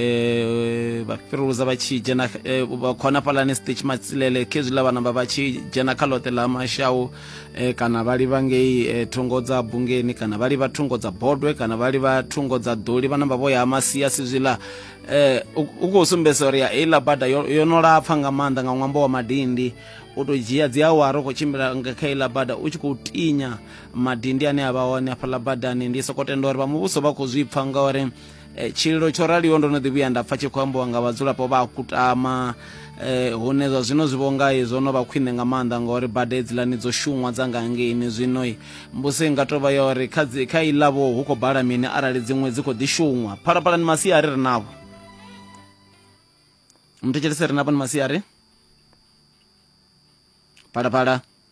eh, vha fhiruluza vha tshi dzhena eh, vha khou hanafhalani stitch matsilele khezwiḽa vha namba vha tshi dzhena kha ḽoṱhe ḽa mashau eh, kana vha livha ngei eh, thungo dza bungeni kana vha livha thungo dza bodwe kana vha livha thungo dza ḓoli vha namba vho ya masia sizwiḽa eh, u u khou sumbedzisa uri ya heiḽa bada yo yo no lapfa nga maanḓa nga ṅwambo wa madindi u tou dzhia dzi awara u khou tshimbila nga kha iḽa bada u tshi khou tinya madindi ane a vha hone hafhaḽa badani ndi sokou tenda uri vha muvhuso vha khou zwi pfha ngauri Eh, tshililo tsho raliho ndo no ḓi vhuya nda pfa tshi khou ambiwa nga vhadzulapo vha a kutama eh, hune zwa zwino zwi vhonga zwo no vha khwine nga maanḓa ngauri bada hedzilani dzo shunwa dza nga ngeini zwino mbuso i nga tou vha ya uri kha iḽavho hu khou bala mini arali dziṅwe dzi khou ḓi shunwa phalaphalani masiari ri navho mthetshelese ri navho ni masiari phalaphala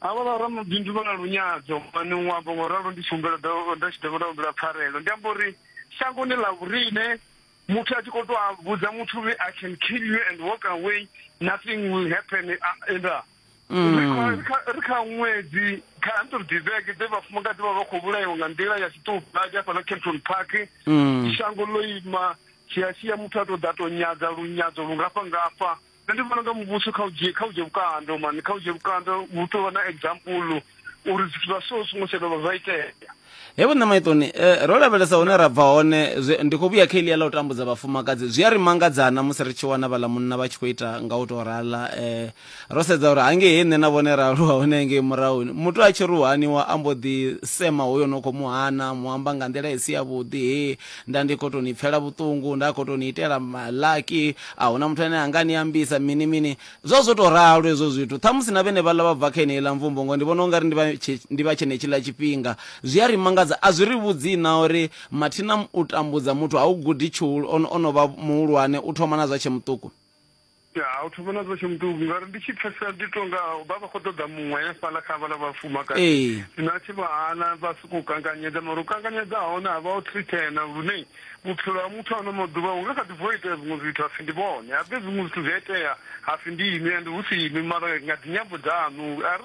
havha vha ramabindu vha na lunyadzo mani u amba ngo ralo ndi tshi humbela nda tshi dovha nda humbela pfarelo ndi amba uri shangoni ḽa vhurine muthu a tshi khou to a vhudza muthu uri i can kill you and walk away nothing will happen enda mm. ri kha ṅwedzi kha hundred vhege dze vhafumakadzi vha vha khou vhulaiwa nga nḓila ya tshiṱuhadi hafhaḽa capton park mm. shango ḽo ima shiashiya muthu a to ḓa to nyadza lunyadzo lungafha ngafha Nṋe ndi vhona unga muvhuso kha u dzhie kha u dzhie vhukando mani kha u dzhie vhukando hu tou vha na example uri zwithu zwa so zwi songo tsha dovha zwa itea He vho nṋe maitoni eh, ro lavhelesa hune ra bva hone zwi, ndi khou vhuya kha elia ḽa u tambudza vhafumakadzi zwi a ri mangadzana musi ri tshi wana vhaḽa munna vha tshi khou ita nga u tou rala eh, ro sedza uri hangei he nṋe na vhone ra aluwa hone hangei murahuni muthu a tshi ri u haniwa a mbo ḓi sema hoyo no khou mu hana mu amba nga nḓila i si yavhuḓi he nda ndi khou tou ni pfela vhuṱungu nda khou tou ni itela malaki a huna muthu ane anga ni ambisa mini mini zwo zwo tou ralo hezwo zwithu ṱhamusi na vhene vhaḽa vha bva kha eneiḽa mvumbo ngo ndi vhona ungari ndi vha tshe- ndi vha tshenetshiḽa tshifhinga zwi a ri mangadza a zwi ri vhudzi na uri mathina u tambudza muthu ha u gudi tshihulu ono ono vha muhulwane u thoma na zwa tshe muṱuku ya a thu vhona zwo tshimutuku ngauri ndi tshi pfesesa ndi to nga vha vha khou ṱoḓa muṅwe fhala kha vhala vhafumakadzi zwino a tshi vha hana vha sokou kanganyedza mara u kanganyedza hone a vha o thritena lune vhutshilo ha muthu ano maḓuvha hu nga kha ḓi bvo itea zwiṅwe zwithu hapfi ndi vhone habe zwiṅwe zwithu zwi a itea hapfi ndi inwi ende hu si inwi mara nga dzinyambo dzaṋu a ri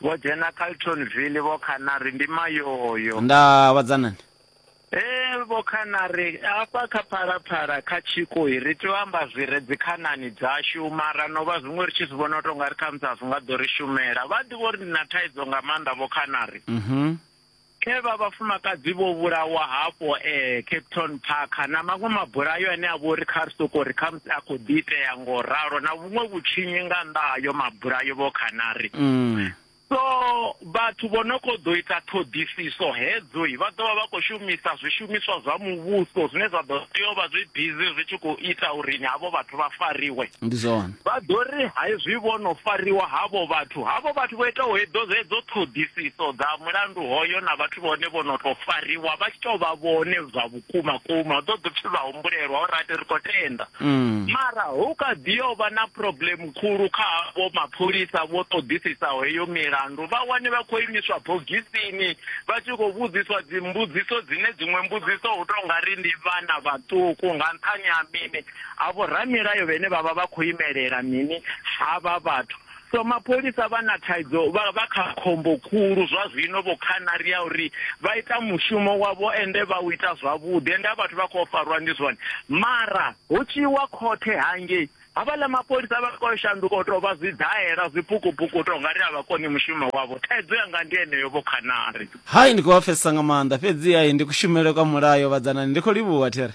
Vho dzhena Carltonville vho khana ri ndi mayoyo. Nda vhadza nani? Ee vho khana ri hafha kha Phalaphala kha Tshiko hi ri tea u amba zwi re dzi khanani dzashu mara no vha zwiṅwe ri tshi zwi vhona u tou nga ri khamusi a zwi nga ḓo ri shumela. Vha ḓivha uri ndi na thaidzo nga maanḓa vho khana ri. Khe vha vhafumakadzi vho vhulawa hafho e Cape Town Park na maṅwe mabulayo ane a vhori kha ri soko ri kha musi a khou ḓi itea ngo ralo na vhuṅwe vhutshinyi nga nnḓa ha yo mabulayo vho khanari mm. so vhathu vho no kho ḓo ita ṱhoḓisiso hedzo vha ḓovha vha khou shumisa zwishumiswa zwa muvhuso zwine zwa ḓo tea u vha zwi busy zwi tshi khou ita uri ni havho vhathu vha fariwe ndi zwone Vha ḓo ri haezwi vho no fariwa havho vhathu, havho vhathu vho itaho hedzo hedzo ṱhoḓisiso dza mulandu hoyo na vhathu vhone vho no tou fariwa vha tshi tou vha vhone zwa vhukuma kuma, ḓo ḓo pfi vha humbulelwa uri ati ri khou tenda. Mm. Mara hu kha ḓi yo vha na problem khulu kha havho mapholisa vho ṱoḓisisaho heyo milandu, vha wane vha khou imiswa bogisini vha tshi khou vhudziswa dzimbudziso dzine dziṅwe mbudziso hu tou nga ri ndi vhana vhaṱuku nga nṱhani ha mini? Ha vhoramilayo vhene vha vha vha khou imelela mini havha vhathu? So mapholisa vha na thaidzo, vha vha kha khombo khulu zwa zwino vho Khanari ya uri vha ita mushumo wavho ende vha u ita zwavhuḓi ende a vhathu vha khou farwa ndi zwone mara hu tshi iwa khothe hangei havhaḽa mapholisa vha khou shanduka u tou vha zwidaela zwipukupuku u tou nga ri a vha koni mushumo wavho. Thaidzo yanga ndi yeneyo vho Khanari. Hai ndi khou vha pfesesa nga maanḓa fhedzi hai ndi kushumele kwa mulayo vhadzanani ndi khou livhuha there.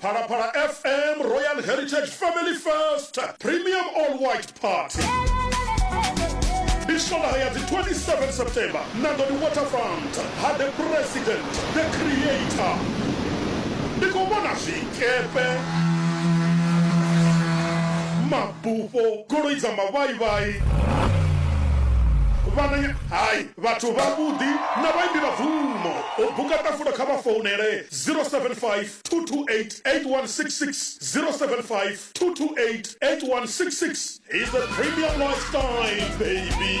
Phalaphala FM Royal Heritage Family Fest Premium All White Party ndi swalaha ya dzi 27 september na ḓo ndi waterfront ha the president the creator ndi khou vhona zwikepe mabufho goloi dza mavhaivhai vhananya hai Vhathu vhavhuḓi na vhaimbi vha bvumo. U buka ṱafulo kha vha founele 0752288166, 0752288166. He's a premium lifestyle baby.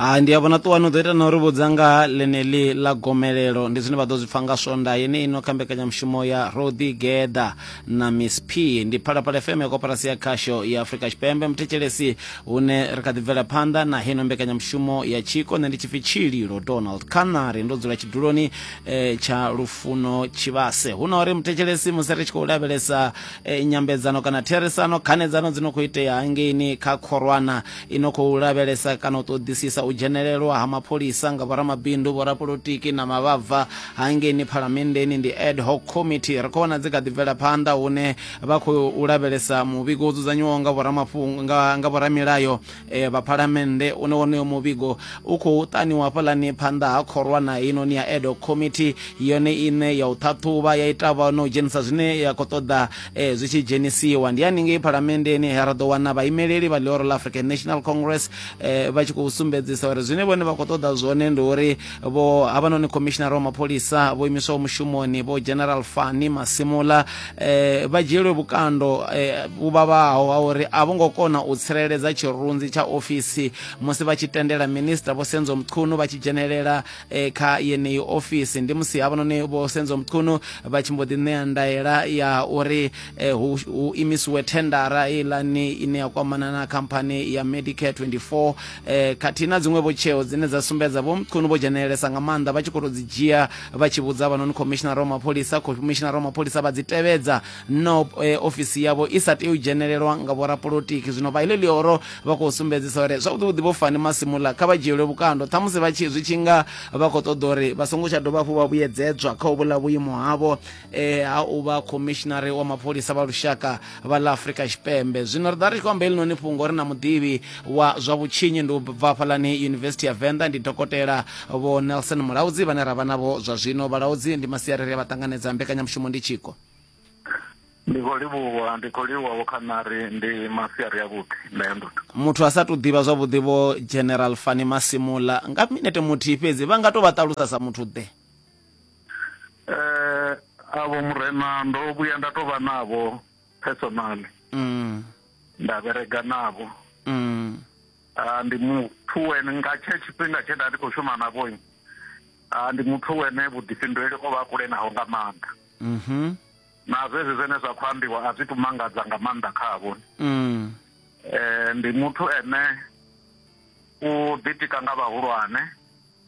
ha ndi a vhona ṱuwa no ḓo ita na uri vhudza nga ḽeneḽi ḽa gomelelo ndi zwine vha ḓo zwi pfa nga swonda yene ino kha mbekanyamushumo ya rodi geda na miss p ndi phalaphala fm ya koporasi ya khasho ya afurika tshipembe muthetshelesi hune ri kha ḓi bvela phanḓa na heno mbekanyamushumo ya tshiko nṋe ndi tshipfi tshililo donald canary ndo dzula tshiduloni e, tsha lufuno tshivhase hu na uri muthetshelesi musi ri tshi khou lavhelesa e, nyambedzano kana therisano khanedzano dzi no khou itea hangeini kha khorwana i no khou lavhelesa kana u ṱoḓisisa u dzhenelelwa ha mapholisa nga vhoramabindu vhorapolotiki na mavhabva hangeini phalamenndeni ndi ad hoc committee ri khou vhona dzi kha ḓi bvela phanḓa hune vha khou lavhelesa muvhigo wo dzudzanyiwaho nga vhoramilayo vha Phalamennde une wonoyo muvhigo u khou ṱaniwa hafhaḽani phanḓa ha khorwana heinoni ya Ad Hoc Committee yone ine ya u ṱhaṱhuvha ya ita vha na u dzhenisa zwine ya khou ṱoḓa eh, zwi tshi dzhenisiwa ndi haningei Phalamenndeni he ra ḓo wana vhaimeleli vha Leoro la African National Congress eh, vha tshi khou sumbedzisa uri zwine vhone vha khou ṱoḓa zwone ndi uri vho havhanoni khomishinara wa mapholisa vho imiswaho mushumoni vho general fani masimula eh, vha dzhielwe vhukando eh, vhu vhavhaho ha uri a vho ngo kona u tsireledza tshirunzi tsha ofisi musi vha tshi tendela minista vho senzo mchunu vha tshi dzhenelela eh, kha yeneyi ofisi ndi musi havhanoni vho senzo mchunu vha tshi mbo ḓi ṋea ndaela ya uri eh, hu, hu imisiwe thendara ilani ine ya kwamana na khamphani ya medicare 24 eh, khathihi na dziṅwevho tsheo dzine dza sumbedza vho mchunu vho dzhenelelesa nga maanḓa vha tshi khou tou dzi dzhia vha tshi vhudza avhanoni khomishinara wa mapholisa khomishinara wa mapholisa vha dzi tevhedza no eh, ofisi yavho i sa tei u dzhenelelwa nga vhorapolotiki zwino vha iḽo ḽioro vha khou sumbedzisa uri zwavhuḓivhuḓi vho fani masimula kha vha dzhielwe vhukando ṱhamusi vha tshi zwi tshi nga vha khou ṱoḓa uri vha songo tsha dovha hafhu vha vhuyedzedzwa kha u vhula vhuimo havho eh, ha u vha khomishinari wa mapholisa vha lushaka vha ḽa afurika tshipembe zwino ri ḓa ri tshi khou amba helinoni fhungo ri na muḓivhi wa zwa vhutshinyi ndi u bva fhalani yunivesithi ya venḓa ndi dokotela vho nelson mulaudzi vhane ra vha navho zwa zwino vhalaudzi ndi masiari ri a vha ṱanganedza mbekanyamushumo ndi tshiko ndi khou livhuwa ndi khou livhuwa vho khanari ndi masiari avhuḓi nda ya ndoto muthu a sa tou ḓivha zwavhuḓi vho general fani masimula nga minete muthihi fhedzi vha nga tou vha ṱalusa sa muthu ḓe eh avo murena ndo vhuya nda to vha navho personally mm. nda berega navho mm. uh, ndi muthu wene nga tshe tshifhinga tshe nda ndi khou shuma navho uh, ah, ndi muthu wene vhuḓifhinduleli o vha a kule naho nga maanḓa mm -hmm. na zwezwi zwene zwa khou ambiwa a zwi tu mangadza nga maanḓa khavho mm. eh, ndi muthu ene u ḓitika nga vhahulwane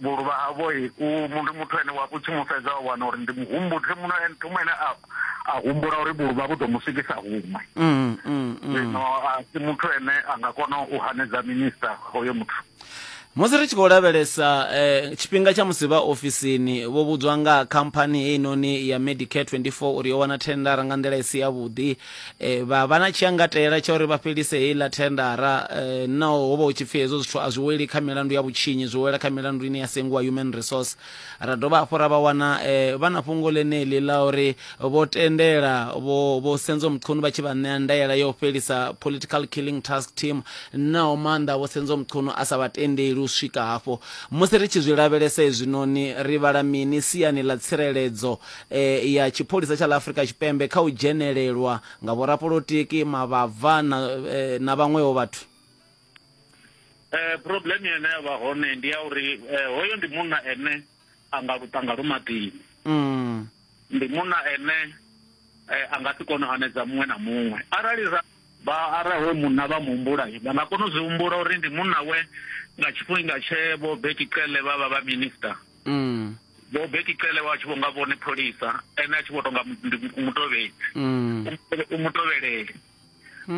Vhuluvha havho u ndi muthu ane wa u tshi mu fhedza wa wana uri ndi muhumbudzi muno ene thoma ene a a humbula uri vhuluvha vhu ḓo mu swikisa huṅwe mm, mm, mm. zwino a si muthu ene a nga kona u hanedza minista hoyo muthu musi ri tshi khou lavhelesa eh, tshifhinga tsha musi vha ofisini vho vhudzwa nga khamphani heinoni ya medicare 24 uri yo wana thendara nga nḓila i si yavhuḓi e, vha vha na tshiangatela tsha uri vha fhelise heiḽa thendara e, no ho vha hu tshi pfhi hezwo zwithu a zwi weli kha milandu ya vhutshinyi zwi wela kha milandu ine ya sengiwa human resource ra dovha hafhu ra vha wana e, vha na fhungo ḽeneḽi ḽa uri vho tendela vho vho senzo mchunu vha tshi vha ṋea ndaela ya u fhelisa political killing task team naho maanḓa vho senzo mchunu a sa vha tendeli u swika hafho musi ri tshi zwi lavhelesa hezwinoni ri vhala mini siani ḽa tsireledzo ya tshipholisa tsha ḽa Afrika Tshipembe kha u dzhenelelwa nga vhorapolotiki, mavhabva na, na vhaṅweho vhathu? Eh, problem ine ya vha hone ndi ya uri eh, hoyo ndi munna ene a nga lutanga lu maḓini mm. ndi munna ene eh, a nga si kone u anedza muṅwe na muṅwe arali ra vha arali hoyo munna vha muhumbula vha nga kona u zwi humbula uri ndi munna we nga tshifhinga tshe vho betiqele vha vha vha minister Vho Bekicele vha tshi vho nga vhone pholisa, ene a tshi vho tou nga ndi mutovhedzi, u mutovheleli.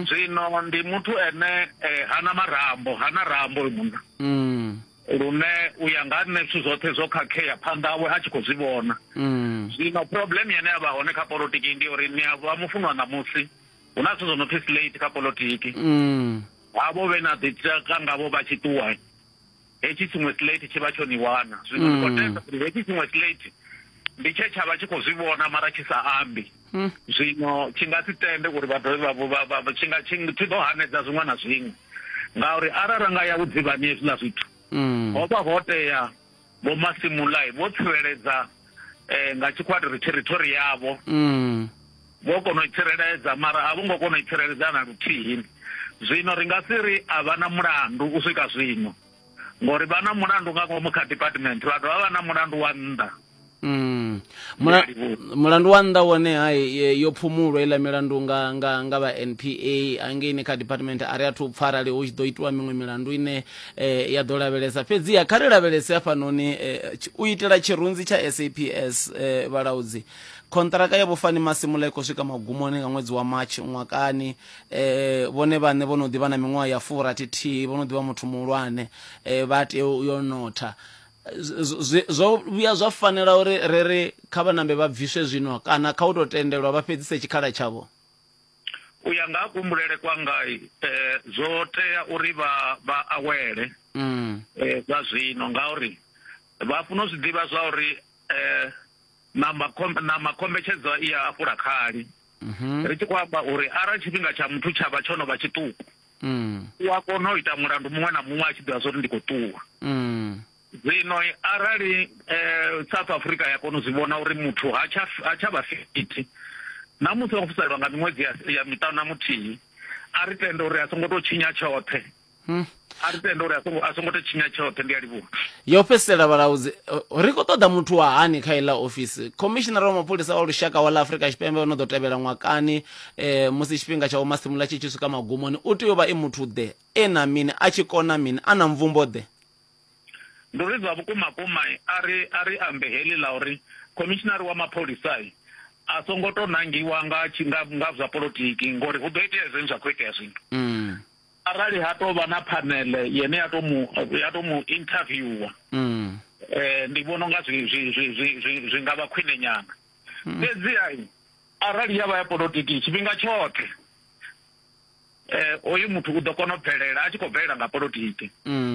Zwino ndi muthu ene ha na marambo, ha na rambo hoyu munna. Lune u ya nga ha nṋe zwithu zwoṱhe zwo khakhea phanḓa hawe a tshi khou zwi vhona. Zwino problem ine ya vha hone kha polotiki ndi ya uri ni a vha mufunwa ṋamusi, hu na zwithu zwo no pfi slate kha polotiki. Havho vhe na ḓi tshaka ngavho vha tshi ṱuwa. hetshi tshiṅwe slate tshi vha tsho ni wana zwino ndi khou mm. tenda uri hetshi tshiṅwe slate ndi tshe tsha vha tshi khou zwi vhona mara tshi sa ambi mm. zwino tshi nga si tende uri vha dovhe vhavho tshi nga tshi ḓo hanedza zwiṅwe na zwiṅwe ngauri arali ra nga ya vhudzivhani hezwiḽa zwithu mm. ho vha ho tea vho masimulai vho tsireledza um nga tshikwatiri theritori yavho Vho kona u i tsireledza, mara a vho ngo kona u i tsireledza na luthihi. Zwino ri nga si ri a vha na mulandu u swika zwino, ngauri vha na mulandu nga ngomu kha department, vha dovha vha vha na mulandu wa nnḓa. Mm. Mula, mulandu wa nnḓa wone hai e, yo phumulwa iḽa milandu nga nga nga vha NPA hangeini kha department a ri athu pfa arali hu tshi ḓo itiwa miṅwe milandu ine eh, ya ḓo lavhelesa fhedziha kha ri lavhelese hafhanoni eh, u itela tshirunzi tsha SAPS eh, vhalaudzi Khonṱiraka ya Vho Fani Masimula i khou swika magumoni nga ṅwedzi wa March ṅwakani. Eh, vhone vhaṋe vho no ḓi vha na miṅwaha ya furathi thihi, vho no ḓi vha muthu muhulwane, eh, vha tea u yo notha. Zwo vhuya zwa fanela uri ri ri kha vhanambe vha bviswe zwino kana kha u tou tendelwa vha fhedzise tshikhala tshavho? U ya nga ha kuhumbulele kwanga eh, zwo tea uri vha vha awele mm. eh, zwa zwino ngauri vha funa u zwi ḓivha zwa uri eh, na makhombe, na makombetshedzo i a fhula khali. Ri tshi khou amba uri arali tshifhinga tsha muthu tsha vha tsho no vha tshiṱuku, u a kona u ita mulandu muṅwe na muṅwe a tshi ḓivha zwa uri ndi khou ṱuwa. Zwino arali South Africa ya kona u zwi vhona uri muthu ha tsha ha tsha vha fithi na musi o fhiselwa nga miṅwedzi ya ya miṱanu na muthihi, a ri tende uri a songo tou tshinya tshoṱhe. Hmm. a ri tende uri a songo a songo to tshinya tshoṱhe ndi a livhuwa yo fhedzisela vhalaudzi ri khou ṱoḓa muthu wa hani kha iḽa ofisi khomishinara wa mapholisa wa lushaka wa ḽa afrika tshipembe o no ḓo tevhela ṅwakani um musi tshifhinga tsha vhomasimula tshi tshi swika magumoni u tea u vha e muthu ḓe e na mini a tshi kona mini a na mvumbo ḓe ndi uri zwa vhukuma kuma a ri a ri ambe heḽi ḽa uri khomishinari wa mapholisa a songo to nangiwa nga nga zwa polotiki ngori hu ḓo itea zwine zwa khou itea zwino mm. arali ha tou vha na phanele yene ya to mu ya to mu interviewer mm. eh ndi vhona nga zwi zwi zwi zwi zwi nga vha khwine nyana mm. fhedzi ai arali ya vha ya politiki tshifhinga tshoṱhe eh oyu muthu u ḓo kona u bvelela a tshi khou bvelela nga politiki mm.